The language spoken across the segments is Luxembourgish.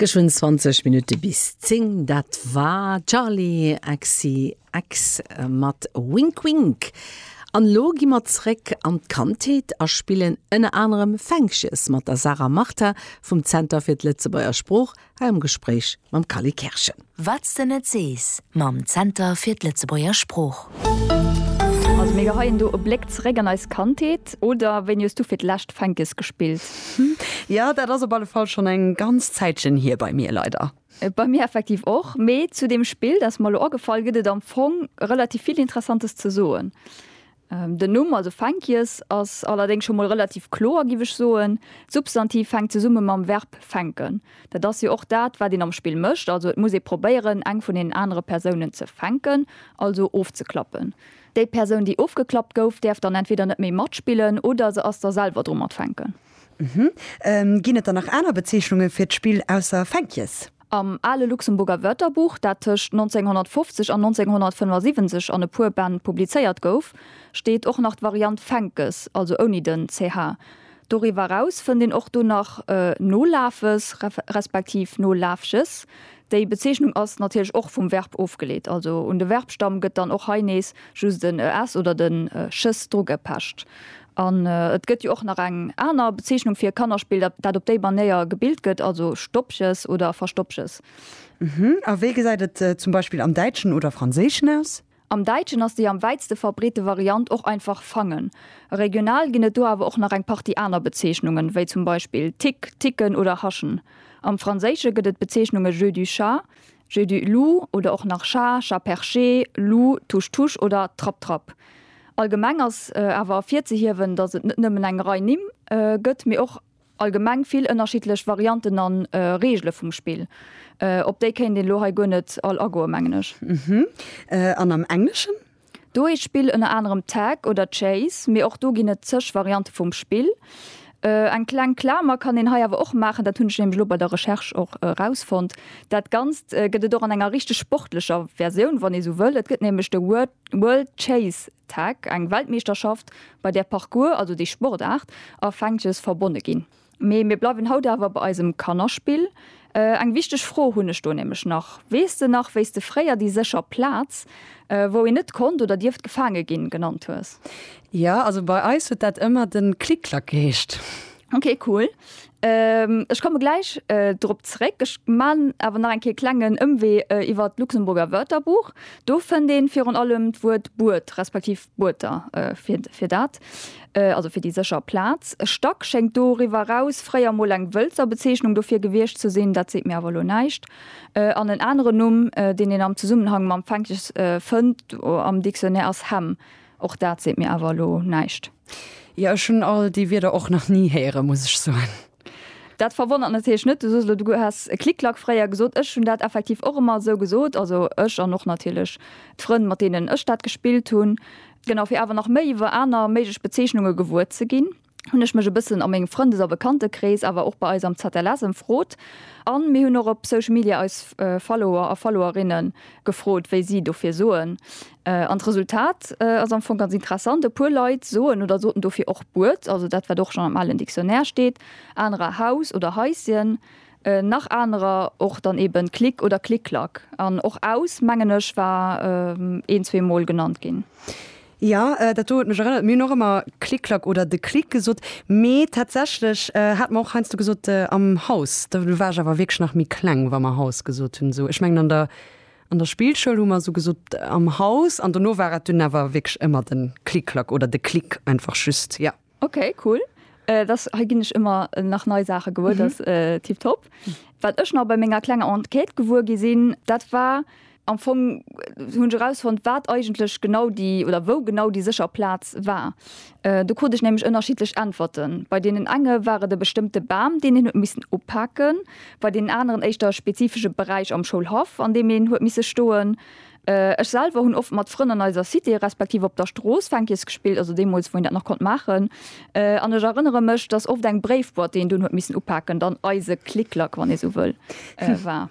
Gësch hunn 20 Minutte bis 10. Dat war Charli XCX mat Wink Wink. An elo gi mer zréck an d'Kandheet a spillen ënner anerem Fänkches mat der Sarah Martin vum Zenter fir d'Lëtzebuerger Sprooch hei am Gespréich mam Kally Kerschen. Wat's de net sees mam Zenter fir d'Lëtzebuerger Sprooch. Also mir geheien do e Bléck zeréck an eis Kandheet, oder wéini hues du fir d'lescht Fänkes gespillt? Jo, dat ass op alle Fall schonn eng ganz Zäitchen hier bei mir, leider. Bei mir effektiv och, mee zu deem Spill, dat ass mer elo agefall, gëtt et am Fong relativ vill Interessantes ze soen. Den Numm, also Fänkjes, ass allerdéngs scho mol relativ kloer, giff ech soen. D'Substantiv fänkt zesumme mam Verb fänken. Dat ass jo och dat, wat een am Spill mécht. Also et muss ee probéieren, eng vun deenen anere Persounen ze fänken, also ofzeklappen. Déi Persoun, déi ofgeklappt gouf, däerf dann entweder net méi matspillen oder se ass da selwer dru mat fänken. Ginn et dann nach aner Bezeechnunge fir d'Spill ausser Fänkjes? Am ale Luxemburger Wörterbuch, dat tëscht 1950 an 1975 an e puer Bänn publizéiert gouf, steet och nach d'Variant Fänkes, also ouni den ch. Doriwwer eraus fënnt een och do nach Nolafes respektiv Nolafches. Déi Bezeechnung ass natierlech och vum Verb ofgeleet, also un de Verbstamm gëtt dann och hei nees just en es oder den ches drugepecht. An et gëtt jo och nach eng aner Bezeechnung fir e Kannerspill, dat dat op déi Manéier gebilt gëtt, also Stoppches oder Verstoppches. Uhmm. A wéi gesäit et zum Beispill am Däitschen oder Franséischen aus? Am Däitschen ass déi am wäitste verbreete Variant och einfach fangen. Regional ginn et do awer och nach eng Partie aner Bezeechnungen, wéi zum Beispill Tick, ticken oder haschen. Am Franséische gëtt et d'Bezeechnunge jeu du chat, jeu du loup oder och nach chat, chat perché, loup, touche-touche oder trapp-trapp. Allgemeng ass awer ervirzehiewen, datt et net nëmmen eng Rei Nimm gëtt, mee och allgemeng vill ënnerschiddlech Varianten an Reegele vum Spill. Op déi kéint een elo hei guer net all agoen, mengen ech. An am Engleschen? Do heescht d'Spill ënner anerem Tag oder Chase, mee och do ginn et zeg Variante vum Spill. Eng kleng Klamer kann een hei awer och maachen, dat hunn ech nämlech elo bei der Recherche och erausfonnt, Dat Ganzt gëtt et och an enger richteg sportlecher Versioun, wann ee esou wëll. Et gëtt nämlech de World Chase Tag, eng Weltmeeschterschaft, bei där Parcours, also déi Sportaart, a Fänkjes verbonne ginn. Mee mir bleiwen haut awer bei eisem Kannerspill. Eng wichteg Fro hunn ech do nämlech nach. Weess de nach, wéi s de fréier déi sécher Plaz, wou een net konnt oder dierft gefaange ginn, genannt hues? Jo, also bei eis huet dat ëmmer de Klick-Klack geheescht. Ok, cool. Ech komme gläich drop zeréck. Ech maan awer nach eng Kéier e klengen Ëmwee iwwert d'Luxemburger Wörterbuch. Do fënnt een virun allem d'Wuert Buert respektiv Buerter fir dat. also fir déi sécher Plaz. Stack schéngt doriwwer eraus fréier emol eng Wëlzer Bezeechnung dofir gewiescht ze sinn, dat seet mir awer elo näischt, an en aneren Numm, deen een am Zesummenhang mam Fänkes fënnt am Dictionnaire, ass Hemm, och dat seet mir awer elo näischt. Jo, ech hunn all déi Wierder och nach ni héieren, muss ech soen. Dat verwonnert natierlech net. Du soos elo, du häss Klick-Klack fréier gesot. Ech hunn dat effektiv och ëmmer esou gesot. Also ech an och natierlech d'Frënn, mat deenen ech dat gespillt hunn. Genau, fir awer nach méi iwwer aner méiglech Bezeechnunge gewuer ze ginn, hunn ech mech e bëssen a mengem Frëndes a Bekantekrees, awer och bei eis am ZLS ëmfrot. A mir hunn och op Social Media eis Follower a Followerinne gefrot, wéi si dofir soen. An d'Resultat ass am Fong ganz interessant, e puer Leit soen oder soten dofir och Buert, also dat wat och schonn am alen Dictionnaire steet, anerer Haus oder Haischen, nach anerer och dann eben Klick oder Klick-Klack. An och Aus mengen ech war een, zwee Mol genannt ginn. Jo, dat do huet mech erënnert, mir hunn och ëmmer Klick-Klack oder de Klick gesot, mee tatsächlech hate mer och heiansdo gesot am Haus, do war ech awer wierklech nach méi kleng, wa mer Haus gesot hunn. Esou, ech mengen an der An der Spillschoul hu mer esou gesot, am Haus an dono war et dunn awer wierklech ëmmer de Klick-Klack oder de Klick einfach just, jo. Okay, cool. Dass hei ginn ech ëmmer nach nei Saache gewuer, dat ass tiptop. Wat ech nach bei menger klenger Enquête gewuer gi sinn, dat war am Fong, hunn ech erausfonnt, wat eigentlech genau déi oder wou genau déi sécher Plaz war. Do krut ech nämlech ënnerschiddlech Äntwerten. Bei deenen enge war et e bestëmmte Bam, deen een huet missen upaken, bei deenen aneren éischter e spezifesche Beräich am Schoulhaff, an deem een huet misse stoen. Ech selwer hunn oft mat Frënn an eiser Cité respektiv op der Strooss Fänkies gespillt, also deemools, wou een dat nach konnt maachen. An ech erënnere mech, dass oft eng Bréifboîte, déi een dunn huet missen upaken, dann eise Clic-Clac, wann ee sou wëll, war.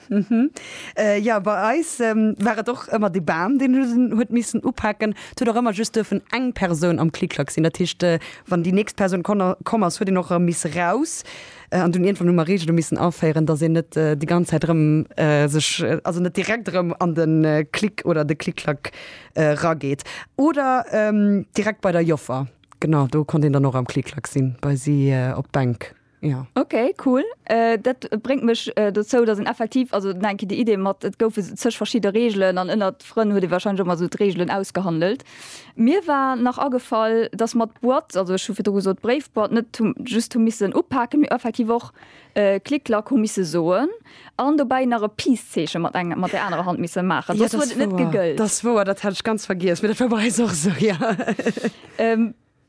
Jo, bei eis war et och ëmmer de Bam, deen huet missen upaken. Et huet och ëmmer just duerfen eng Persoun am Klick-Klack sinn. Dat heescht, wann déi nächst Persoun komm ass, huet een och erëm misse raus. An dunn iergendwann hu mer Reegele missen aféieren, dass een net déi ganz Zäit erëm sech, also net direkt erëm an de Klick oder de Klick-Klack erageet. Oder direkt bei der Joffer, genau, do konnt een dann och am Klick-Klack sinn, bei si op d'Bänk. Ja. Ok, cool. Dat bréngt mech dozou, datt een effektiv, also nach eng Kéier déi Idee mat, et goufe zeg verschidde Reegelen an ënnert Frënn huet ee warscheinlech och mol esou d'Reegelen ausgehandelt. Mir war nach agefall, datt mer d'Boîte, also ech hu virdru gesot d'Bréifboîte, net hu just hu missen upaken, mee effektiv och Klick Klack hu misse soen an dobäi nach e Peace-Zeeche mat engem, mat där anerer Hand misse maachen, soss huet et net gegëllt. Dat ass wouer, dat hat ech ganz vergiess, mee dat war bei eis och esou, jo.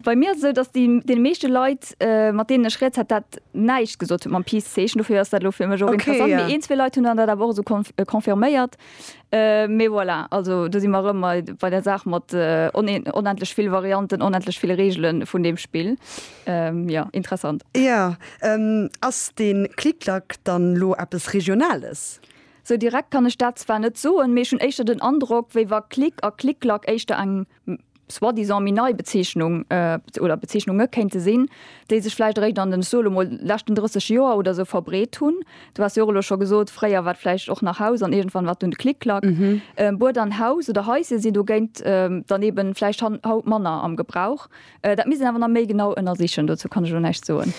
Bei mir ass et esou, dass deene meeschte Leit, mat deenen ech rieds, hat dat näischt gesot huet mam Peace-Zeechen. Dofir ass dat elo fir mech och interessant. Mee een, zwee Leit hunn dann dat awer och esou confirméiert. Mee voilà, also do si mer erëm bei der Saach mat onendlech vill Varianten, onendlech vill Reegele vun deem Spill. Jo, interessant. Jo, ass dee Klik-Klak dann elo eppes Regionales? Esou direkt kann ech dat zwar net soen, mee ech hunn éischter den Androck, wéi wa Klik a Klik-Klak éischter eng soi-disant méi nei Bezeechnung oder Bezeechnunge kéinte sinn, déi sech vläicht eréischt an den, ech soe lo mol, leschten 30 Joer oder esou verbreet hunn. Du has jo och elo scho gesot, fréier war et vläicht och nach Haus an iergendwann war et dunn Klick-Klack. Bued an Haus oder Haisje sinn dogéint dann eeben vläicht haut manner am Gebrauch. Dat misst een awer nach méi genau ënnersichen, dozou kann ech elo näischt soen.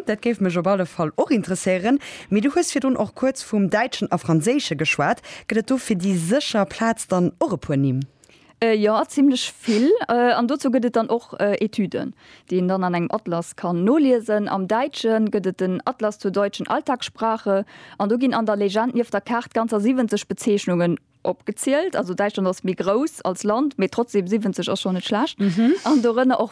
Dat géif mech op alle Fall och interesséieren. Mee du hues virdrun och kuerz vum Däitschen a Franséische geschwat. Gëtt et do fir déi sécher Plaz dann och e puer Nimm? Jo, zimlech vill. An dozou gëtt et dann och Etüden, déi een dann an engem Atlas kann noliesen. Am Däitsche gëtt et den Atlas zur deutschen Alltagssprache an do ginn an der Legend nieft der Kaart ganzer 70 Bezeechnungen opgezielt. Also Däitschland ass méi grouss als Land, mee trotzdem 70 ass schonn net schlecht. An dorënner och